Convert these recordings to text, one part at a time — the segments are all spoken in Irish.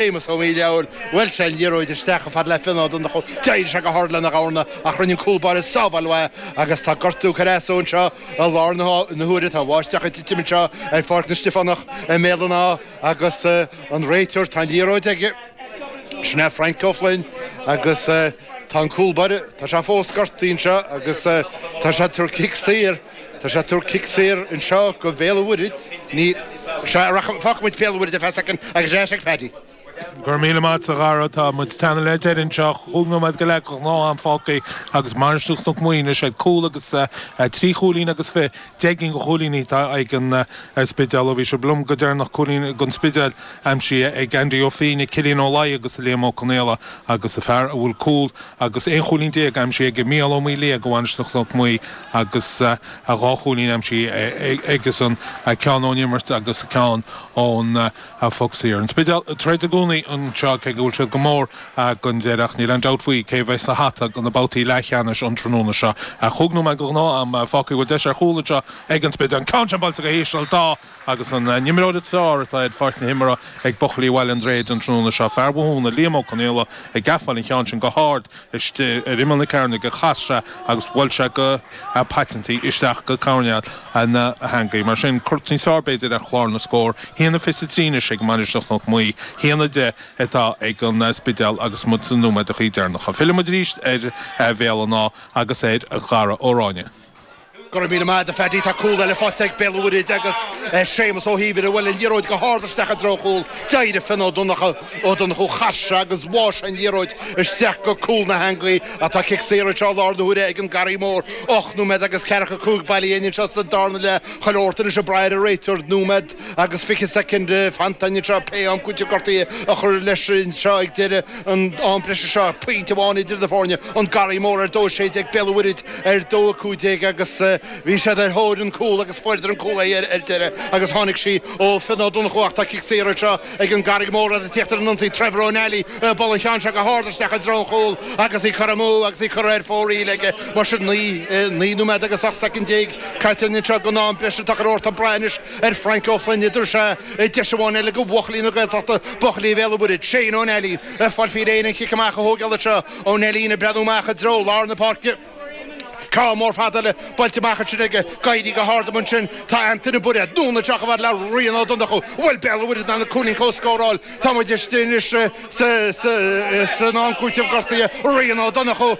Séamus Ó hÍomhair, Bhuail sé an liathróid isteach a fhad le Fionn Ó Donnchú, d'éirigh sé go hard lena dhorna ach rinne an cúl báire sábháil uaidh agus tá gortú curtha as dó anseo i láthair na huaire. Tá bháisteach ag titim anseo ar Pháirc na Stiofánach i mBéal an Átha agus an réiteoir, tá an liathróid aige, sin é Frank Ó Floinn agus tá an cúl báire, tá sé fós gortaithe anseo agus tá sé ag tabhairt cic saor. Tá sé ag tabhairt cic saor anseo go Béal Mhuirthid, ní, sea, rachaidh, fágfaidh muid Béal Mhuirthid ar feadh soicind agus ar ais ag Paddy. Go raibh míle maith agatsa, a Dhara, tá muid ag teannadh le deireadh anseo, chúig nóiméad go leith de ghnáth am fágtha agus Mainistir Chnoc Muaidhe anois ag cúl agus trí chúilín agus fiche, deich gcinn de chúilíní atá ag an Spidéal ó bhí sibh liom go deireanach, cúilín don Spidéal aimsithe ag Andy Ó Fíoighne, Cillian Ó Laighin agus Liam Ó Conaola agus an fear a bhfuil cúl agus 11 chúilín aimsithe aige, Mícheál Ó Maoildhia do Mhainistir Chnoc Muaidhe agus dhá chúilín aimsithe aige-san, ceann ón imirt agus ceann ón phoc saor. An Spidéal ag troid i gcónaí anseo, cé go bhfuil siad go mór chun deiridh, ach níl aon dabht faoi cé a bheidh sa hata do na babhtaí leathcheannais an tráthnóna seo. Chúig nóiméad de ghnáth-am fágtha, bhfuil deis ar chúl anseo ag an Spidéal, an ceann sin buailte go híseal, dá. agus an t-imreoir is fearr atá ar pháirc na himeartha ag buachaillí Bhaile an Droichid an tráthnóna seo, fear Bhothúna, Liam Ó Conaola, ag gabháil an cheann sin go hard istigh ar imeall na cearnóige, chas sé agus bhuail sé go paiteanta isteach go coirnéal na heangaí. Mar sin, cruth níos fearr, b'fhéidir, ar chlár na scór. A haon a fiche trí anois ag Mainistir Chnoc Muaidhe, a haon a deich atá ag an Spidéal agus muid sna nóiméadacha deireanacha. Fillfidh muid arís ar Bhéal an Átha agus ar Dhara Ó Ráinne. Go raibh míle maith agat, a Phaddy. Tá cúl eile faighte ag Béal an Mhuirthead agus Séamus Ó hÍomhair a bhuail an liathróid go hard isteach i dtreo an chúil. D'éirigh Fionn Ó Donnchú Ó Donnchú chas sé agus bháigh sé an liathróid isteach go cúl na heangaí ach tá cic saor anseo i láthair na huaire ag an Garraí Mór. Ocht nóiméad agus ceathracha cúig bailithe dhínn anseo sa darna leath. Chuile shórt anois ag brath ar an réiteoir. Nóiméad. agus 20 soicind fanta anseo, pé am cúiteamh gortaithe a chur leis anseo ag deireadh an am breise seo. Pointe amháin idir na foirne, an Garraí Mór ar a dó 16, Béal an Mhuirthead ar a dó 15 agus bhí siad ar thóir an cúl agus fuaireadar an cúl ar deireadh agus tháinig sí ó Fionn Ó Donnchú ach tá cic saor anseo ag an Garraí Mór agus ag tíocht ar an ionsaí Trevor Ó Nally, ag bualadh an cheann seo go hard isteach i dtreo an chúil agus í curtha amú agus í curtha ar fóraoil aige mar sin 9 nóiméad agus 18 soicind. Caite anseo den am breise tá chuile shórt ag brath anois ar Frank Ó Floinn an dtabharfaidh sé deis amháin eile do bhuachaillí na Gaeltachta, buachaillí Bhéal an Mhuirthead, Shane Ó Nailín, ag fáil faoi réir chun an chic amach a thógáil anseo Ó Nailín ag breathnú amach i dtreo lár na páirce. Ceann mór fada buailte amach ansin aige, ag éirí go hard ann ansin tá Antaine Bairéad, anonn isteach a fhad le Rian Ó Donnchú, bhfuil Béal an Mhuirthead in ann an cúilín seo a scóráil tá muid istigh anois san am cúiteamh gortaithe Rian Ó Donnchú,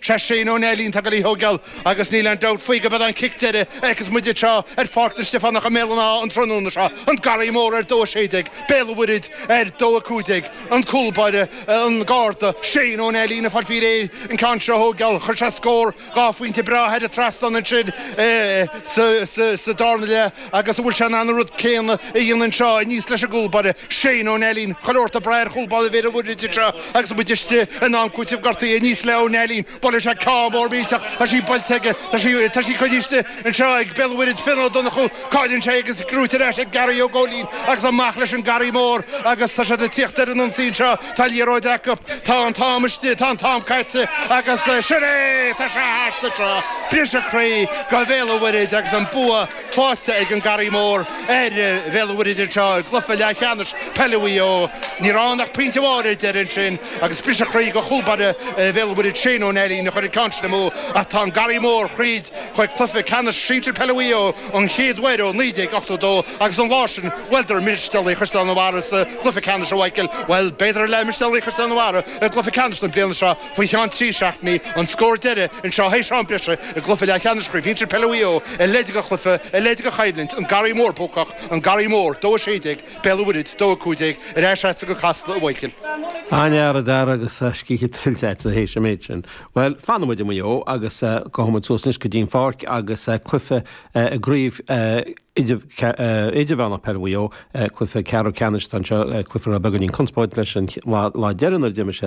Sé Shane Ó Nailín atá ag gabháil í a thóigeáil, agus níl aon dabht faoi go mbeidh an cic deiridh a fheicfidh muid anseo ar Pháirc na Stiofánach i mBéal an Átha an tráthnóna seo, an Garraí Mór ar dó 16, Béal an Mhuirthead ar dó 15, an cúl báire, an Garda, Shane Ó Nailín, ag fáil faoi réir an ceann seo a thóigeáil. Chuir sé scór dhá phointe breá thar an trasnán ansin sa darna leath. Agus an bhfuil sé in ann an rud céanna a dhéanamh anseo, aníos leis an gcúlbaire, Shane Ó Nailín. Chuile shórt ag brath ar chúlbáire Bhéal an Mhuirthead anseo agus muid istigh in am cúitimh gortaithe. Aníos le Ó Nailín, buaileann sé ceann mór millteach, tá sí buailte aige, tá sí, tá sí coinnithe anseo ag Béal an Mhuirthead, Fionn Ó Donnchú, cailleann sé agus gnóite ar ais ag Gary Ó Góilín agus amach leis an Garraí Mór agus tá siad ag tíocht ar an ionsaí anseo. Tá liathróid acu, tá an t-am istigh, tá an t-am caite agus sin é! Tá sé thart anseo. Briseadh croí do Bhéal an Mhuirthead agus an bua faighte ag an Garraí Mór ar Bhéal an Mhuirthead anseo i gcluiche leathcheannais peile Mhaigh Eo. Ní raibh ann ach pointe amháin ar deireadh ansin agus briseadh croí do chúlbaire Bhéal an Mhuirthead Shane Ó Nailín a chuir an ceann sin amú ach tá an Garraí Mór thríd chuig cluiche ceannais sinsir peile Mhaigh Eo, an chéad uair ó 1982 agus an lá sin bhuaileadar Mistéalaigh Chaisleán an Bharraigh sa Cluiche Ceannais an mbeidh siad ag bualadh, b'fhéidir arís le Mistéalaigh Chaisleán an Bharraigh i gcluiche ceannais na bliana seo faoi cheann trí seachtainí, an scór deiridh anseo théis am breise i gcluiche leathcheannais Chraobh Shinsir Peile Mhaigh Eo a leithéid de chluiche, a leithéid de choimhlint, An Garraí Mór Buacach, An Garraí Mór, dó 16, Béal an Mhuirthead, dó 15, ar ais agat go Casla, a Mhichíl. An-fhear, a Dara, agus scíth tuillte agatsa théis an méid sin? Bhuel, fanfaidh muid i Maigh Eo agus gabhfaidh muid suas anois go dtí an pháirc agus cluiche i gCraobh Idirmheánach Peile Mhaigh Eo, Cluiche Ceathrú Ceannais atá anseo cluiche a raibh beagáinín conspóide leis an lá deireanach ar d'imir siad.